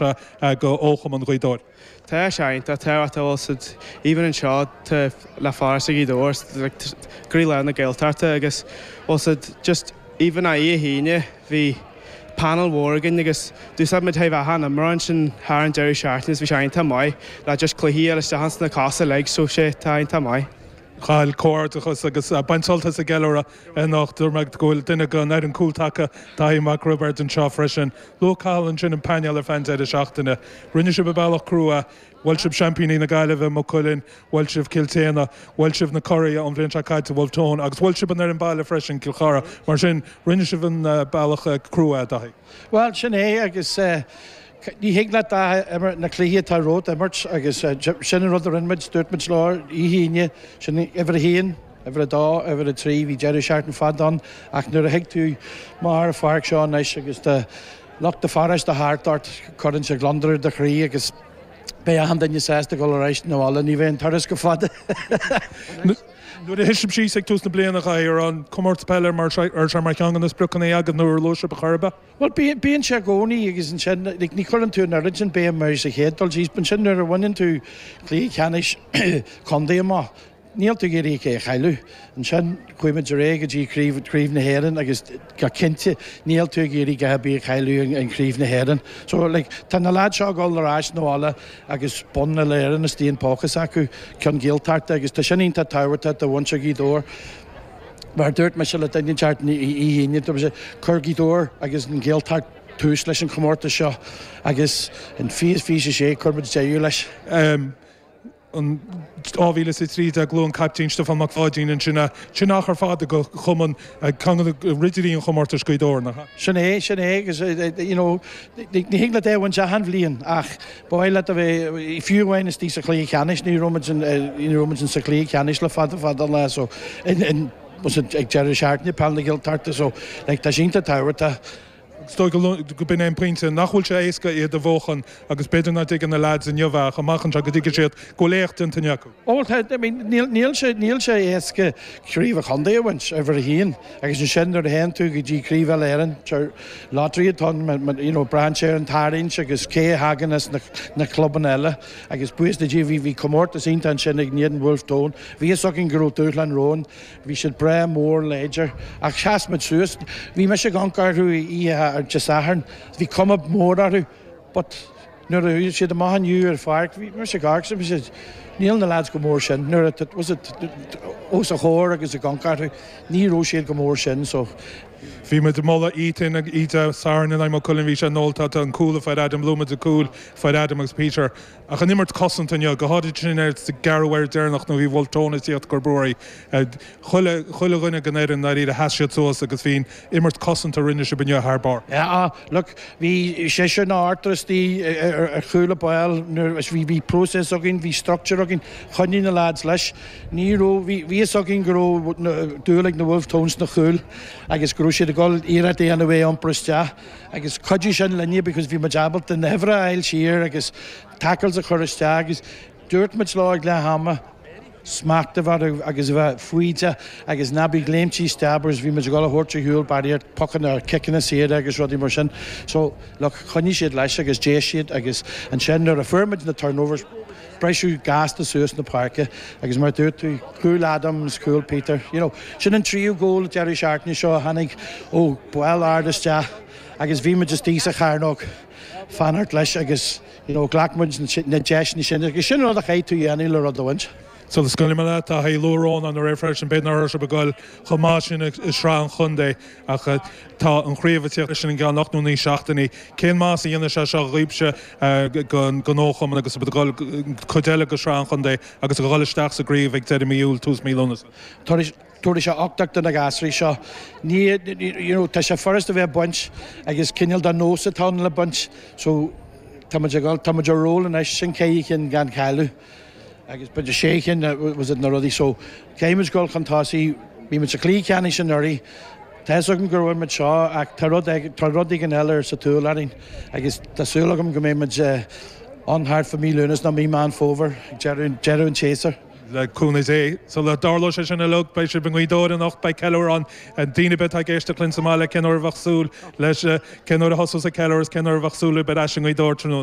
ó chumann Ghaoth Dobhair. Tá sé iontach tábhachtach a bhfuil's agat even anseo tá Gaoth Dobhair like croílár na Gaeltachta agus bhfuil's agat just even oíche Aoine bhí panel mór againn agus d'úsáid muid achan imreoir ansin thar an deireadh seachtaine so bhí sé iontach maith le just cluichí eile isteach sna cosa like so tá sé iontach maith. Cathal, comhghairdeachas agus bain sult as an gceiliúradh. Anocht, d'fheic mé go bhfuil duine den fhoireann cúltaca, Daithí Mac Roibeard, anseo freisin. Luaigh Cathal ansin an painéal ar feadh an deireadh seachtaine. Rinne sibh an bealach crua. Bhuail sibh seaimpíní na Gaillimhe, Maigh Cuilinn, bhuail sibh Cill tSéadhna, bhuail sibh na curaidh ón bhliain seo caite, Bhulf Tón, agus bhuail sibh an fhoireann baile freisin, Cill Chartha. Mar sin, rinne sibh an bealach crua, a Dhaithí. Bhuel, sin é agus ní thig leat ach na cluichí atá romhat a imirt agus sin an rud a rinne muid. Dúirt muid oíche Aoine, sin uimhir a haon, Uimhir a dó, uimhir a trí, bhí deireadh seachtaine fada ann ach nuair a thig tú amach ar an pháirc seo anois agus tá lucht do pharáiste thart ort, cuireann sé gliondar ar do chroí agus beidh achan duine sásta dul ar ais chun an bhaile, ní bheidh an turas rófhada. Nuair a thosaigh sibh ag tús na bliana, chaithfeadh go raibh an Comórtas Peile mar cheann de na spriocanna agaibh nuair a luaigh sibh a chur ar bith? Bhuel, bíonn sé i gcónaí agus ansin, ní chuireann tú an oiread sin béime air sa chéad dul síos, ansin nuair a bhaineann tú cluiche ceannais contae amach, Níl tú ag iarraidh é a chailleadh. Ansin chuaigh muid ar aghaidh go dtí Craobh na hÉireann agus go cinnte níl tú ag iarraidh a dhath ar bith a chailleadh in Craobh na hÉireann. So like tá na lads seo ag dul ar ais chun an bhaile agus bonn uile Éireann istigh ina bpóca s'acu ceann Gaeltachta agus tá sin iontach tábhachtach do mhuintir Ghaoth Dobhair. Mar a dúirt mise le duine inteacht Dé hAoine dúirt mise chuir Gaoth Dobhair agus an Ghaeltacht tús leis an chomórtas seo agus in 2026 chuir muid deireadh leis. In 2013 luaigh an captaen Stiofán Mac Pháidín ansin is achar fada ag an chumann ag ceann ridirí an chomórtais Gaoth Dobhair. Sin é, sin é agus you know ní thig leat é a bhaint achan bhliain ach ba mhaith leat a bheith fiú amháin istigh sa chluiche cheannais ní raibh muid in ní raibh muid in sa chluiche cheannais le fada fada lá so ag deireadh seachtaine Peil na Gaeltachta so like tá sé iontach tábhachtach Is dóigh gurb in é an pointe, nach bhfuil sé éasca iad a bhuachan agus b'fhéidir nach dtuigeann na leaids inniu ach amach anseo go dtuigfidh siad go bhfuil éacht déanta acu. Ó tá, I mean níl sé, níl sé éasca craobh an chontae a bhaint, uimhir a haon, agus ansin nuair a théann tú go dtí craobh Uile Éireann, sure, lottery atá ann but you know braitheann sé ar an tarraingt agus cé a thagann as na, na clubanna eile agus buíochas le Dia bhí, bhí comórtas iontach ansin againn in éadan Bhulf Tón, bhí fhios againn go raibh dúshlán romhainn. Bhí siad breá mór láidir ach sheas muid suas. Bhí mise ag amharc orthu oíche Dé Sathairn. Bhí cuma mór orthu but nuair a chuaigh siad amach inniu ar pháirc, bhí mise ag amharc agus níl na lads chomh mór sin. Nuair a, was it, os a chomhair agus ag amharc orthu, ní raibh siad chomh mór sin so. Bhí muid ag moladh Ethan oíche Dé Sathairn in aghaidh Maigh Cuilinn. Bhí sé inmholta, an cúl a fuair Adam, luaigh muid an cúl a fuair Adam agus Peter. Ach an imirt cosanta inniu, go háirid sa gceathrú uair deireanach nuair a bhí Wolfe Tones ag tíocht go barr. Chuile chuile dhuine den fhoireann i ndáiríre sheas siad suas agus bhí an imirt cosanta a rinne sibh inniu thar barr. Á, look, bhí seisear nó ochtar istigh ar chúl an bháil nuair is bhí bhí próiseas againn, bhí structure againn, choinnigh na lads leis. Ní raibh, bhí bhí fhios againn go raibh dúil ag na Wolfe Tones sna chúil agus go raibh siad ag dul iarracht a dhéanamh é a iompar isteach. agus chuidigh sin linne because bhí muid ábalta na huimhreacha a fháil siar agus tackles a chur isteach agus dúirt muid leo ag leath ama smacht a bheith orthu agus a bheith foighdeach agus ná bí ag léimtí isteach because bhí muid ag dul a thabhairt ar shiúl barraíocht pocanna or ciceanna saora agus rudaí mar sin so look choinnigh siad leis agus d'éist siad agus ansin nuair a fuair muid na turnovers briseadh gasta suas na páirce agus mar a dúirt tú, cúl Adam is cúl Peter, you know. Sin an tríú cúl deireadh seachtaine seo a tháinig ó bál ard isteach agus bhí muid istigh sa chearnóg, ag fanacht leis agus, you know, ghlac muid na deiseanna sin agus sin an rud a chaithfidh tú a dhéanamh le rud a bhaint. So is cuma liom a leath, tá sé luath, a Rónáin. Anuraidh freisin, b'fhéidir nach raibh sibh ag goil chomh maith sin i sraith an chontae. Ach tá an chraobh ag tíocht leis i gceann ocht nó naoi seachtainí. Cén maitheas a dhéanfaidh sé seo dhaoibhse don chumann agus cuid eile de shraith an chontae agus a dhul isteach sa gcraobh ag deireadh mí Iúil, tús mí Lúnasa? Tabharfaidh sé uchtach do na gasraí seo. Tá sé furast a bheith ag baint ach is cineál de nós atá ann le baint so tá muid ag dhul, tá muid ar ról anois, sin ceithre chinn gan chailleadh. agus ba de sé chinn was it na rudaí so caithfidh muid dul chun tosaigh bhí muid sa chluiche ceannais anuraidh tá fhios agam gur bhain muid seo ach tá rud ag tá rud éigin eile ar sa tsúil againn agus tá súil agam go mbeidh muid ann thart fá mhí Lúnasa nó mí Meán Fómhair ag deireadh deireadh an tséasúir. le cúnamh Dé. Sula dtarlóidh sé sin uilig, beidh sibh i nGaoth Dobhair anocht, beidh ceiliúr ann. Daoine ar bith atá ag éisteacht linn sa mbaile, cén uair a bheadh súil leis, cén uair a thosós an ceiliúr agus cén uair a bheadh súil libh ar ais i nGaoth Dobhair tráthnóna?